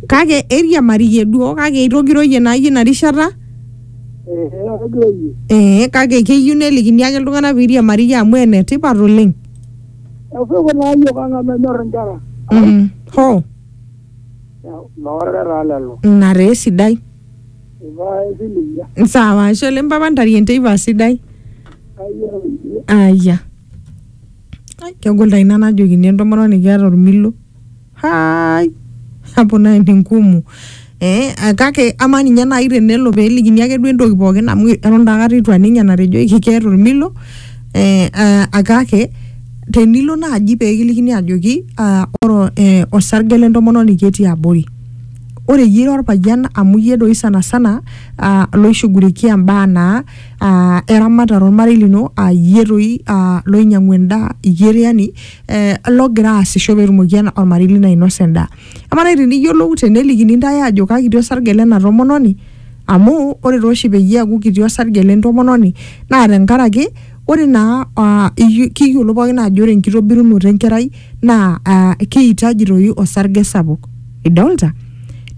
kake eiriamariyie duo kake eitogiroyie naa iyie ina rishata ee kake keyieu nelikini ake iltung'anak peiriamariyie amu enetipat oleng Efuku naa yiok ang amu enyor inkera. Mhm. hoo Noorre taa lelo. ina taa esidai Ivaa esilingia. sawa ashe oleng papa ntarie enteipa sidai Kayieu iyie. aya Ai, kegol taa ina najokini entomononi keeta ormilo hai hapo naye ni ngumu eh, ah, kake ama ninye nai tenelo pelikini ake duo entoki pookin amu eton taa akata itu aning enatejoki keeta olmilo eh, ah, ah, kake tenilo naaji pekilikini ajoki ah, ore eh, osarge lentomononi ketii abori ore iyie ira orpayian amu iyie doi sana sana uh, loishugulikia mbaa naa uh, eramatare ormarei lino uh, iyie doi uh, loinyiang'u endaa iyie doi yani eh, logira aasisho petumoki ena- ormarei lino ainosa endaa amaa nai teniyiolou tenelikini ntae ajo kakiti osarge lena tomononi amu ore tooshi peyie eaku kiti osarge lentomononi naa tenkaraki ore naa ah, iyu- kiyiolo pookin ajo ore enkitobirunoto enkerai naa ah, keitaji toi osarge sapuk idolta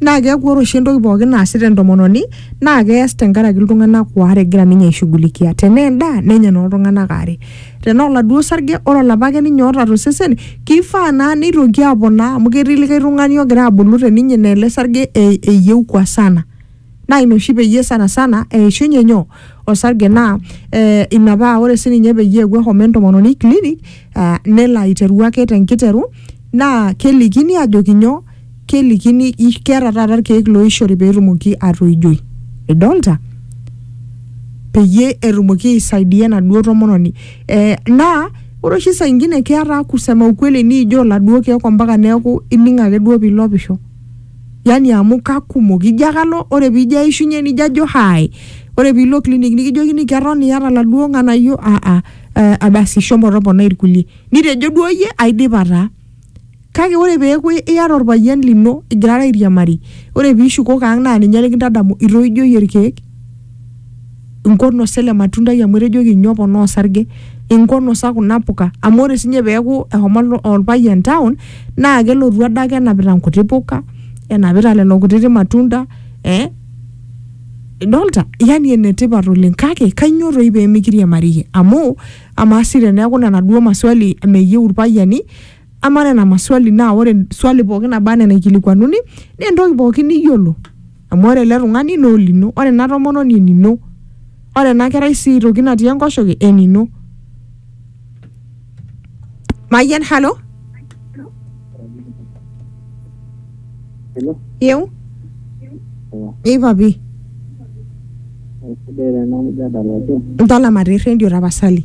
naa keeku ore oshi entoki pookin naasita entomononi naa kees tenkaraki iltung'anak waare egira ninye aishughulikia tenaa endaa nenya nooltung'anak aare tenaa oladuo sarge ore olapa ake ninye oota tosesen kifaa naa neitoki aponaa amu ketii likae tung'ani ogira abulu teninye naa ele sarge e- eyieu kwa sana naa ina oshi peyie sana sana eishunye nyoo osarge naa eh, ina paa ore sininye peyie eewuo ahomo entomononi clinic uh, nelo aiteru ake tenkiteru naa kelikini ajoki nyoo kelikini i- keeta taata irkeek looishori peetumoki atoijoi idolta peyie etumoki aisaidia enaduo tomononi eh, naa ore oshi saa ingine keeta kusema ukweli niijoo iladuo keek ompaka neeku ining ake duo piilopisho yani amu kakumok ijo ake alo ore piijo aishunye nijo ajo hai ore piilo clinic nikijokini keton iyata iladuo ng'anayio aa eh, abasi shomo toponai irkulie nitejo duo iyie aidipa taa Kake ore peeku iyata olpayian lino igirara airiamari, ore piishukoki ang' naa ninye likintadamu itoijoyie ilkeek, inkonosa ele matundai amu etejoki inyo oponaa osarge, inkonosa kuna puka amu ore siinye peeku eshomo olpayian town naa kelotu adake enapita nkuti puka, enapita lelo kutiti matunda ee idolita? Yani enetipat oleng' kake kainyoo toi pee mikiriamariyie? Amu amaa sii teneeku nena duo maswali meyieu ilpayiani. Amaa nena maswali naa ore swali pooki naba anaa enaikilikuanuni naa entoki pooki niyiolo amu ore ele tung'ani naa olino, ore ena tomononi enino, ore ena kerai sii aitoki natii enkoshoke enino. Mayian, halo? Hello, Yeu? Hello. Ei papi, sidai tena mjadala oleng. ntalama te rrendio tapasali.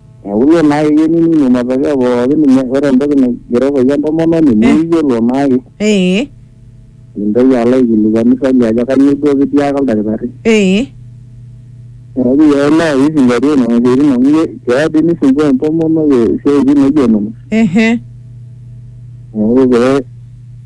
Neeku iyiolo naa ake keinining matokeo pooki ninye ore entoki naigeroko iyie entomononi niyiolo naa ake ee mintoki alo aikilikuanu swali ajo kanyoo duo kitiaka oldakitari. ee Neeku iyiolo naa pisingatia nena siaitin amu iyie keya dii nisumbua entomonok isiaitin naijo nena. ehe Neeku pee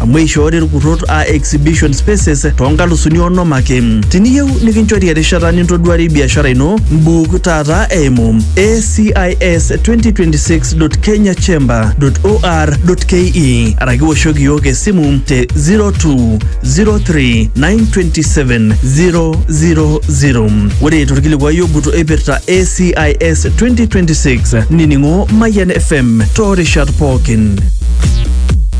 amu eishoori irkurrot aa exhibition spaces too nkalusuni onom ake. Tiniyieu nikinchori erishata nintoduarie biashara ino, mbuuk taata eimu acis2026.kenyachamber.or.ke araki woshoki iyiook esimu te 0203927000. Ore torkilikuai ogut oipirta ACIS 2026 nining'o Mayian FM toorishat pookin.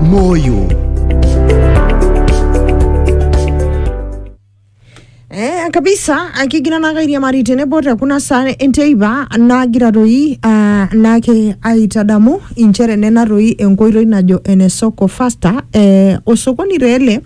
moyo Eh, kabisa akigina nakairia mari tenebo te kuna saa enteipa nagira toi ah, nake aitadamu inchere nena toi enkoitoi najo ene soko faster eh, osokoni reele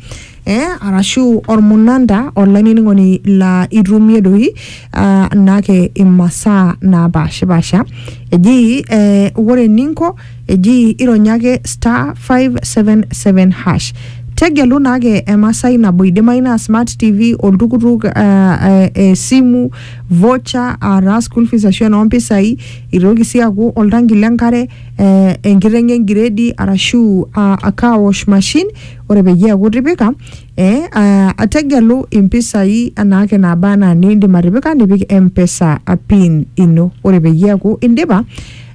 eh, arashu ormunanda olainining'oni laa itumie doi ah, naake imasaa naapashipasha eji eh, ore eninko eji ironyake star 577 hash tegelu naake emasai nabo idimayu naa smart tv oltukutuk uh, uh, esimu vocha ataa school fees ashu enoompisai itoki sii aaku oltanki lenkare uh, enkiteng engiredi arashu uh, a car wash machine ore peyie eaku itipika eh, ah, tegelu impisai anaake naaba anaa niindim atipika nipik mpesa pin ino ore peyie eaku indipa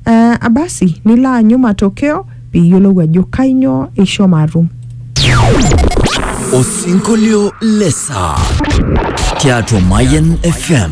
eh, abasi nilo aanyu matokeo piiyiolou ajo kainyoo ishomo atum Osinkolio le saa tiatua Mayan FM.